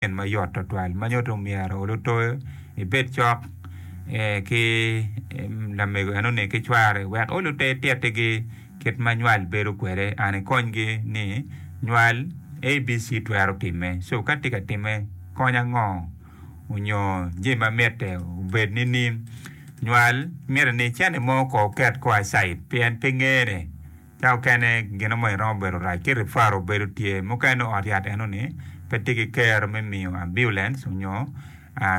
gin ma yot twatwal ma nyuto ni myero lutoyo ibed cok ki lamego enoni ki cware wek olute titigi kit ma nywal bedo kwede and ikonygi ni nywal ABC twero timme so ka tye ka timme kony ango onyo jami ma mitte obed nining nywal miti ni cene mo ko oket ko acid pien pe ngene Ka okene gino mo iromo bedo rac ki rifaro bedo tye mukene nongo ot yat eno ni pe tye ki kero me miyo ambulance onyo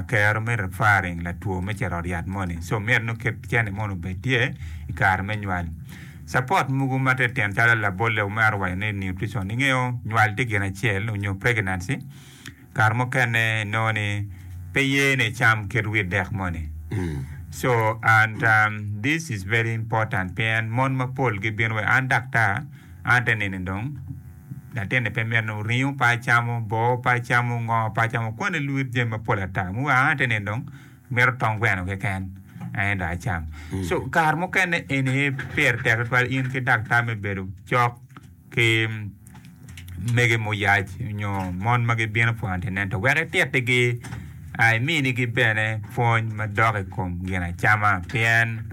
kero me referring latwo me cito ot yat moni so myero nongo ket cene moni obed tye ikare me nywal. Support mogo ma tye tyen calo labolle omaro waco ni nutrition ingeyo nywal tye gin acel onyo pregnancy Kare mukene inongo ni pe ye ni icam kit wit dek moni. So and um, this is very important pien mon mapol gibino wa an daktar an te nini dong latinni pe mito ringo pe acamo, boo pe acamo, ngo pe acamo koni luwit jami mapol ata. Mu wa an te nini dong mito tong gweno keken aye dong acam. So kare mukene eni aye pire tek tutwal in ki daktar me bedo cok. ki mege muyac nyo mon ma gibino pwonyo i antenatal wek itittigi iminigi bene pwony madok i kom ginacama pien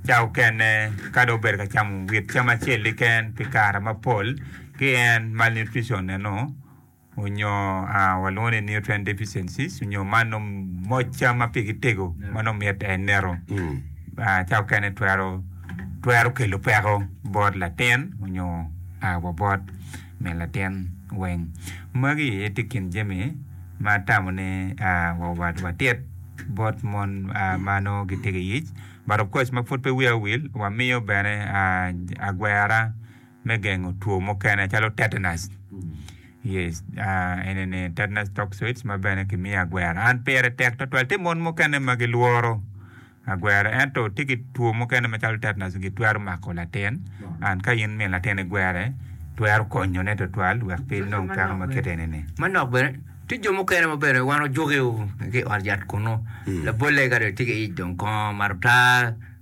ca mukene ka dong obedo ka camo wit cam acel keken pi kare mapol ki en malnutrition-neno. onyo walwongo ni nutrient deficiencies onyo mano moc cam ma pigi tego ma nongo mit en nino ca okene twero twero kelo peko bot latin onyo wa bot min latin weng magi aye tye kin jami ma tamo ni watit bot mon ma nongo gitego iyic but of course ma pud pe wiya owil wamiyo bene agwera me gengo two mukene calo tetanus yes enene tetanus toxoid ma bene kimiyo agwera an pire tek twatwal tye mon mukene ma gilworo agwera ento tye ki two mukene macalo tetanus gitwero mako latin and ka in min latin igwere twero konyone twatwal wek pe inong peko ma kit enene. Manok bene tye jo mukene ma bene wan ojuki ki i ot yat kunu labolle ka dong etye ki ic dong kongo mato taa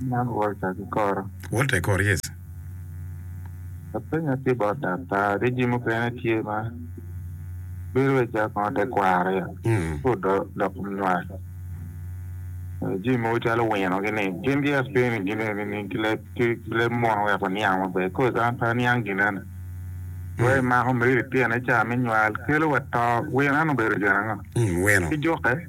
Man Walter kikoro. Walter ikor yes. Apenya ki bot daktar ki jami mukene tye ma bedo wai calo kongo te kwaro ya ci odok nywal jami mogo calo wino gini gin ki aspeni gine nining ki leb ki leb mono wek waniang maber coz an pe aniang ginene wai mako meri litine ca me nywal kelo wa to wino eno obedo gin ango? Wino. Ki juke.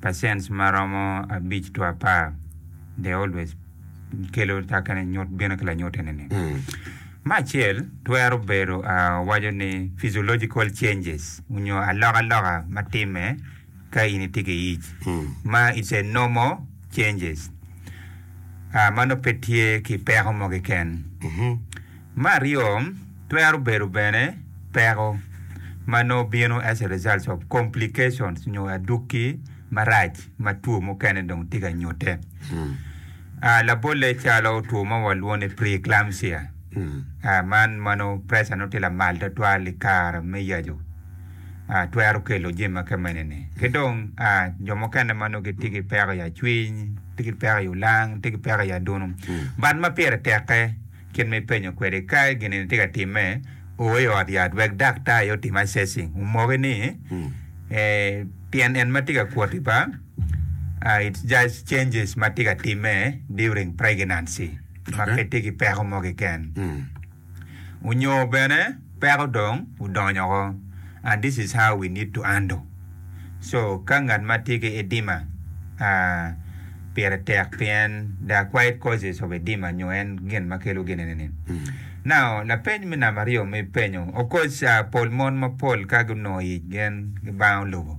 pacent ma romo abic two apar, they always kelo ta kene nyut bino ki lanyute ni ni. Me acel twero bedo waco ni physiological changes onyo aloka loka ma time ka in itye ki ic ma it's a normal changes ma nongo pe tye ki peko mo keken. Me aryo, twero bedo bene peko ma nongo bino as a result of complications nyo adukki marac ma two mukene dong tye ka nyute. Ah, labolle calo two ma walwongo ni preeclampsia, ah, man ma nongo pressure nongo tye lamal twatwal i kare me yaco, ah, twero kelo jami ma kemene-ni. Ki dong, ah, jo mukene ma nongo gitye ki peko i acwiny, tye ki peko i olang, tye ki peko i adunu, but ma pire tekke. Kit ma ipenyo kwede ka gin-ni tye ka timme, o i ot yat wek daktar aye otim assessing, omoki ni tyen en ma tye ka kwoti pa, it's just changes ma tye ka timme during pregnancy ma pe tye ki peko mo keken. Onyo bene. Peko dong odonyo oko and this is how we need to handle so ka ngat ma tye ki edima aah pire tek pi en there are quite causes of edima nyo en gin ma kelo gin ene ni now lapeny me namba aryo ma ipenyo of course pol mon mapol ka gunongo ic gen gibang olubo.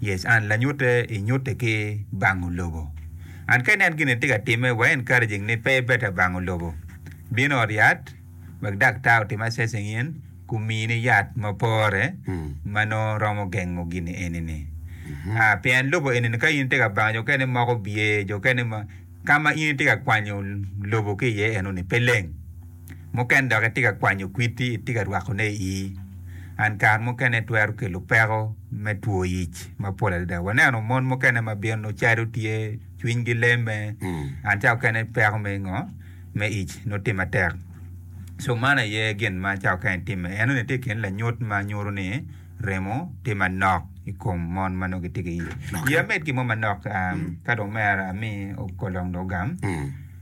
Yes, and lanyute i nyute ki bango lobo. And ka inen gine tye ka time wa encouraging ni pe better bango lobo bino ot yat wek daktar otim assessing in ku mii ni yat ma pore ma nongo romo gengo gini eni ni. Ah, pien lobo eni ni ka in tye ka bango jo kene moko bye, jo kene ma, ka ma in itye ka kwanyo lobo ki iye eno ni pe leng. Mukene dok itye ka kwanyo kwiti, itye ka rwakone i ii, and kare mukene twero kelo peko me two ic mapol adada. Waneno mon mukene ma bino calo tye cwiny gi leme and ca okene peko me ngo me ic nongo tye matek. So man aye gin ma ca okene time. Eno ni tye kine lanyut ma nyuto ni remo tye manok i kom mon ma nongo gitye ki iye. Ye amed ki mo manok ka dong omera ami okolong dong ogam.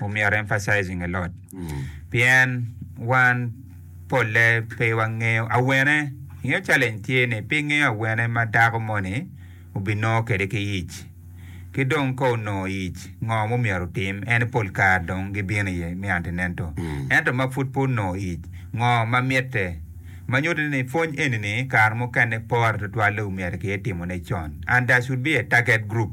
Omyero emphasizing a lot pien wan polle pe wangeyo awene. Ingeyo challenge tye ni pe ingeyo awene ma dako moni obinongo kede ki ic. Ki dong ka onongo ic ngo ma omyero otim en pol kare dong gibino iye me antinento. Ento ma pud pe onongo ic ngo ma mitte. Ma nyuto ni pwony eni ni kare mukene pore tutwale omyero ki etimo ne con and there should be a target group.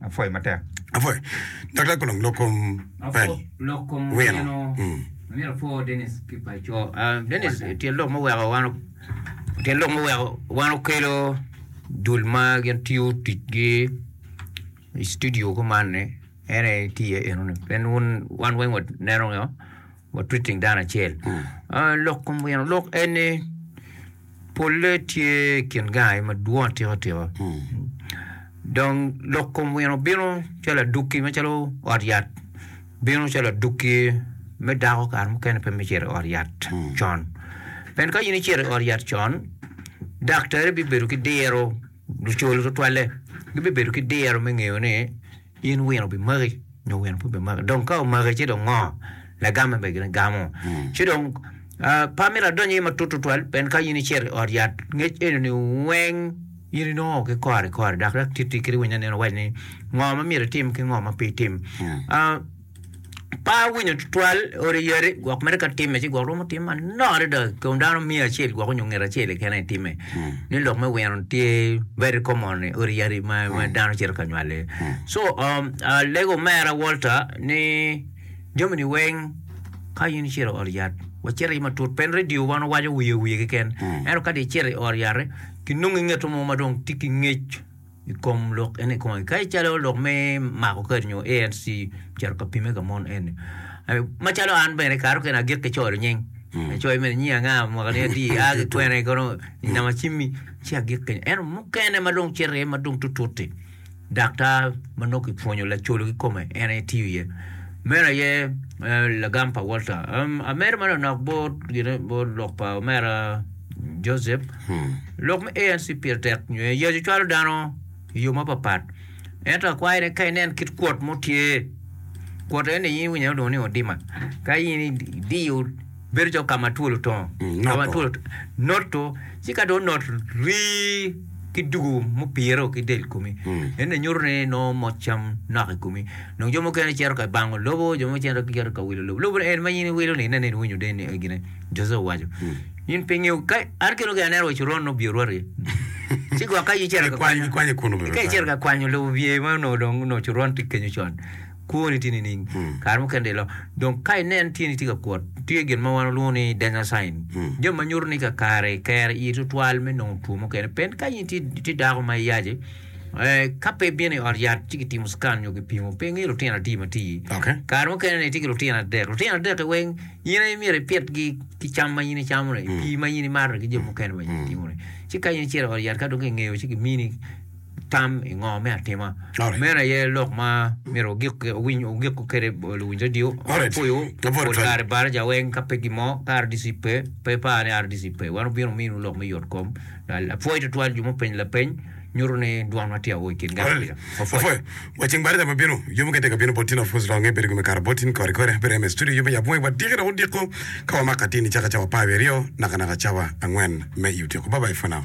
Apwoyo matek. Apwoyo. Daktar Kolong, lok kom pel. Lok kom wino. Myero apwo Denis ki paco. Denis, tyen lok muweko wan tyen lok muweko wan okelo dul ma gin tiyo ticgi i studio kuman-ni en aye tye iye enoni. Pien wun wan weng waneno watwitting dano acel. Lok kom wino lok en ni Polle tye kin gangi madwong atika tika. Dong lok kom wino bino calo adukki macalo ot yat bino calo adukki me dako kare mukene pe me cito i ot yat con. Pien ka in icito i ot yat con, daktari bibedo ki diro lucol tutwalle gibibedo ki diro me ngeyo ni In wino obimaki nyo wino pe obimaki? Dong ka omaki ci dong ngo? Lagame bene gin gamo. Ci dong pe amito adony iye matut tutwal pien ka in icito i ot yat ngec eno-ni weng in inongo ki kore kore dok dok titi kit winyo anena waci ni ngo ma myero itim ki ngo ma pe itim. Pe awinyo tutwal odi yadi gwok mere ka timme ci gwok romo tim manok adada kun dano miya acel gwok onyo nget acel keken aye timme ni lok me wino tye very common i odi yadi ma ma dano cito ka nywal iye so um, alego omera Walter ni jamini weng ka in icito i ot yat wacit aye matut pen radio wan wawaco wiye wiye keken ento ka dong icito i ot yati kinongo ingeto mo ma dong tye ki ngec I kom lok eni kong kadi calo lok me mako kadi nyo ANC ocito ka pimme ka mon eni macalo an bene kato kene agik ki coyo lunying coyo mere nyingi anga mwaka ni adi a ki kwene kono i nama cimmi ci agik kenyo ento mukene ma dong cito iye ma dong tutut-ti dak ta ma nongo kipwonyo lacolo kikome en aye tiyo iye meno aye lagam pa Walter ameri ma lanok bot gine bot lok pa omera Josep Lok me ANC pire tek nyo eyo ci cwalo dano i yo mapapat ento akwayo ni ka inen kit kwot mo tye kwot eni in iwinyo ilwongo ni odima ka in idiyo bedo calo kama twol otongo kama twol noto ci ka dong onot rii ki dugo mupire o ki del komi eni nyuto ni nongo moc cam nok i komi dong jo mukene gicito ka bango lobo jo mukene gicito ka wilo lobo lobo eni ma in iwilo ni ineno ni iwinyo deni gine Jose owaco In pingi ka an kelo ki aneno wa coron no bye rwati ci gwok ka yicer ka kwanyo kwanyo kunu ka yicer ka kwanyo lo bye ma no dong no coron ti kenyo con kwoni ti nining hmm. kare mukene de lo dong ka inen tini ti ka kwot tye gin ma wan olwongo ni danger sign hmm. jami ma nyuto ni ka kare kere i tutwal me nongo two mukene pen ka in ti dako ma iyace Eh, ka pe bino i ot yat ci kitimo scan nyo kipimo pe ngi lutino adi ma ti kare mukene ni ti ki lutino adek lutino adek weng In aye myero ipitgi ki cam ma in icamo-ni, pii ma in imato-ni ki jo mukene ma in itimo-ni. Ci ka in icito i ot yat ka dong kingeyo ci gimini tam i ngo me atima. Meno aye lok ma myero wugik kwede luwiny redio maboco pol kare balo ca weng ka pe gin mo ka RDC pe, pe ipar ni RDC pe. Wan wubino wuminiwu lok me yotkom. Apwoyo tutwal jo mupenyo lapeny. nyuto ni dwan ma tye awo i kin gang opido mapwot. Apwoyo wa ceng bati dama bino yo mukene tek abino botin of course dok angeyo bedo gum ikare botin kore kore abiro eme studio yub me yabo wangi wa diki dok odiko ka wamako atini caka cawa apar wiye aryo naka naka cawa angwen me i otyeko bye bye for now.